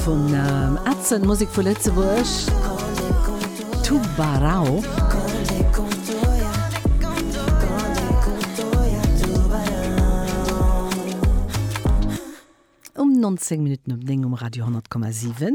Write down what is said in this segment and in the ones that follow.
Vun Atzen, Musek vu Lëtzebuerg, Tubarão. Um 19 Minutten op 9 um Radio 100,7.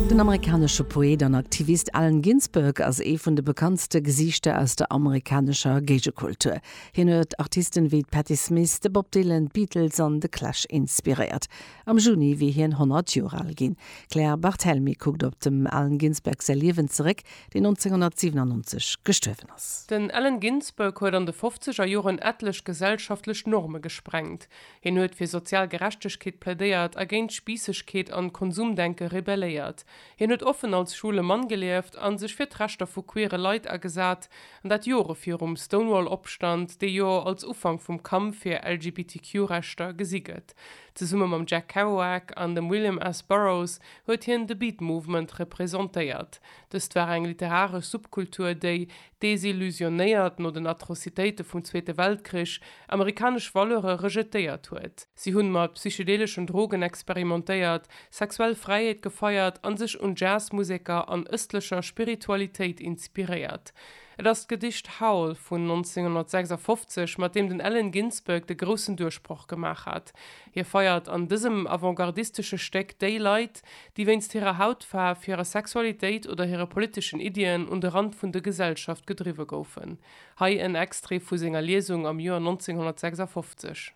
Den amerikanesche Poet an Aktivist Allen Ginsberg ass ee vun de bekanntste Gesiichter aus der amerikanescher Géigekultur. Hien huet Artisten wéi d'Patti Smith, de Bob Dylan, d'Beatles an de Clash inspiréiert. Am Juni wier hien 100 Joer al ginn. D'Claire Barthelmy kuckt op dem Allen Ginsberg säi Liewen zeréck, deen 1997 gestuerwen ass. Den Allen Ginsberg huet an de fofzeger Joren etlech gesellschaftlech Norme gesprengt. Hien huet fir sozial Gerechtegkeet plädéiert a géint Spiissegkeet an Konsumdenke rebelléiert. Hien huet offen als schwule Mann gelieft a sech fir d'Rechter vu queere Leit agesat, an dat Jore virum Stonewall-Opstand, dee jo als Ufank vum Kampf fir LGBTQ-Rechter gesi gëtt. Zesumme mam Jack Kerouac an dem William S. Burroughs huet hien de Beat Movement representéiert. Dëst war eng literaresch Subkultur, déi, desillusionéiert no den Atrocitéite vum Zweete Weltkrich, amerikanesch Valeure rejetéiert huet. Si hunn mat psychedeleschen Drogen experimentéiert, sexuell Fräiheet gefeiert an sech un Jazzmuseker an ëstlecher Spiritualitéit inspiréiert. Et ass d'Gedicht Howl vun 1956, mat deem den Allen Ginsberg de groussen Duerchbroch gemaach hat. Hie feiert an dësem avantgardistesche Stéck déi Leit, déi wéinst hirer Hautfaarf, hirer Sexualitéit oder hire politeschen Iddien un de Rand vun de Gesellschaft gedriwwe goufen. Hei en Extrait vu senger Liesung am Joer 1956.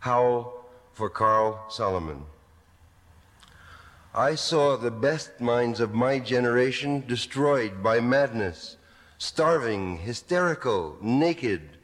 How for Carl Solomon I saw the best minds of my generation destroyed by madness, starving, hysterical, naked,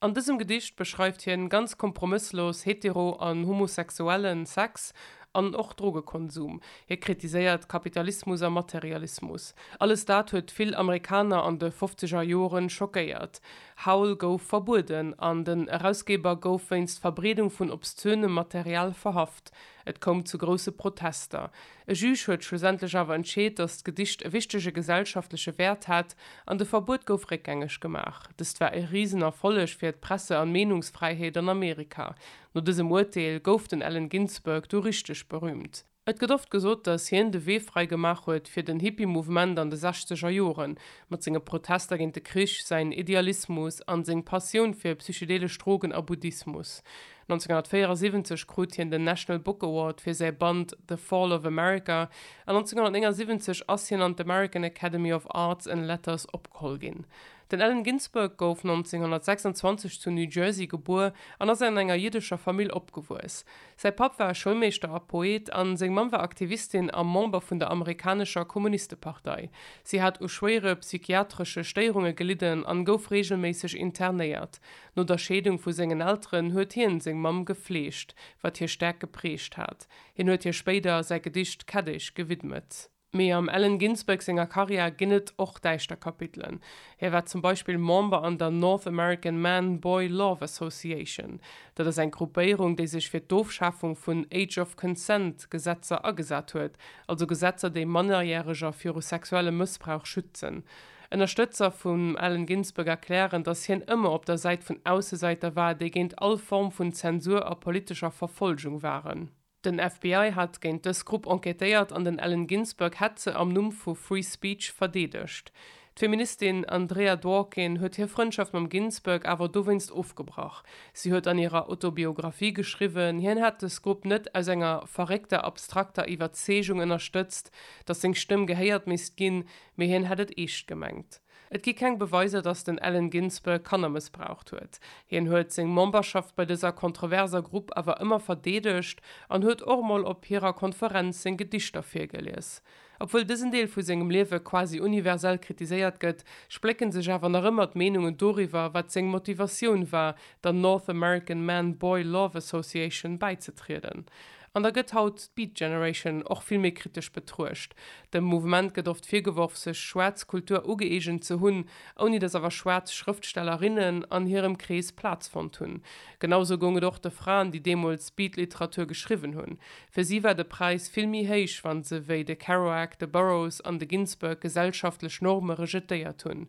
An dësem Gedicht beschreift hien ganz kompromësslos hetero an homosexuellen Sex an och Drogekonsum. Hie kritiséiert Kapitalismus a Materialismus. Alles dat huet vill Amerikaner an de fofzeger Joren schockéiert. Howl gouf verbueden an den Erausgeber gouf wéinst Verbreedung vun obszönem Material verhaft. Et koum zu grousse Protester. E Juge huet schlussendlech awer entscheet, datt d'Gedicht e wichtege gesellschaftleche Wäert hat an de Verbuet gouf réckgängeg gemaach. Dëst war e risen Erfolleg fir d'Presse an Meenungsfräiheet an Amerika. No dësem Urteel gouf den Allen Ginsberg du richteg berüümt. Et gëtt oft gesot, datt hien de Wee fräi gemaach huet fir den Hippie-Mouvement an de sechzeger Joren, mat senge Protester géint de Krich, säin Idealismus an seng Passioun fir psychedelesch Drogen a Buddhismus. 1974 krut hien den National Book Award fir säi Band The Fall of America, an 1979 ass hien an d'American Academy of Arts and Letters opgeholl ginn. Den Allen Ginsberg gouf 1926 zu New Jersey gebuer an ass an enger jiddescher Famill opgewuess. Säi Papp war Schoulmeeschter a Poet, a seng Mamm war Aktivistin a Member vun der amerikanescher Kommunistepartei. Si hat u schwéiere psychiatresche Stéierunge gelidden an gouf reegelméisseg internéiert. No der Scheedung vu sengen Elteren huet hien seng Mamm gefleegt, wat hie staark geprägt hat. Hien huet hir spéider säi Gedicht Keddesch gewidmet. Mee am Allen Ginsberg senger Karriär ginn et och däischter Kapitelen. Hie war zum Beispill Member an der North American Man Boy Love Association. Dat ass eng Gruppéierung, déi sech fir d'Ofschafung vun Age of Consent Gesetzer agesat huet, also Gesetzer, déi Mannerjäreger viru sexuelle Mëssbrauch schützen. Ënnerstëtzer vum Allen Ginsberg erklären, datt hien ëmmer op der Säit vun Aussesäiter war, déi géint all Form vun Zensur a politescher Verfolgung waren. Den FBI hat géint dës Grupp enquêtéiert an den Allen Ginsberg hätt se am Numm vu Free Speech verdeedegt. D'Feministin Andrea Dworkin huet hir Frëndschaft mam Ginsberg awer dowéinst ofgebrach. Si huet an hirer Autobiographie geschriwwen, hien hätt dës Grupp net aus enger verréckter abstrakter Iwwerzeegung ënnerstëtzt, datt seng Stëmm gehéiert misst ginn, Mee hien hätt et eescht gemengt. Et gi keng Beweiser, datt den Allen Ginsberg Kanner mëssbraucht huet. Hien huet seng Memberschaft bei dëser kontroverser Grupp awer ëmmer verdeedegt an huet och mol op hirer Konferenz seng Gedichter virgelies. Obwuel dësen Deel vu sengem Liewe quasi universell kritiséiert gëtt, splécke sech awer nach ëmmer d'Meenungen doriwwer, wat seng Motivatioun war, der North American Man-Boy Love Association bäizetrieden. An da gëtt haut d'Beat Generation och vill méi kritesch betruecht. Dem Mouvement gëtt oft virgeworf, sech schwaarz Kultur ugëeegent ze hunn, ouni datt awer schwaarz Schrëftstellerinnen an hirem Krees Plaz fonnt hunn. Genausou goung et och de Fraen, déi deemools Beat-Literatur geschriwwen hunn. Fir si war de Präis vill méi héich, wa se wéi de Kerouac, de Burroughs an de Ginsberg gesellschaftlech Norme rejetéiert hunn.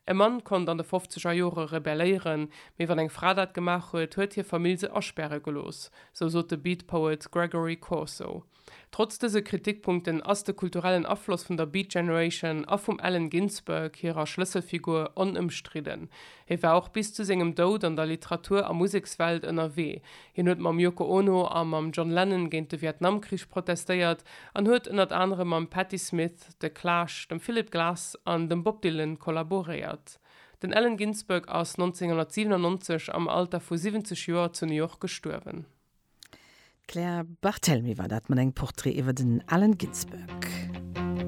E Mann konnt an de fofzeger Jore rebelléieren, mee wann eng Fra dat gemaach huet, huet hir Famill se aspäre gelooss, sou sot de Beat Poet Gregory Corso. Trotz dëse Kritikpunkten ass de kulturellen Afloss vun der Beat Generation a vum Allen Ginsberg hirer Schlësselfigur onëmstridden. Hie war och bis zu sengem Doud an der Literatur a Musekswelt ënnerwee. Hien huet mam Yoko Ono a mam John Lennon géint de Vietnamkrich protestéiert an huet ënnert anerem mam Patti Smith, The Clash, dem Philip Glass an dem Bob Dylan kollaboréiert. Den Allen Ginsberg ass 1997 am Alter vu 70 Joer zu New York gestuerwen. D'Claire Barthelemy war dat mat engem Portrait iwwer den Allen Ginsberg.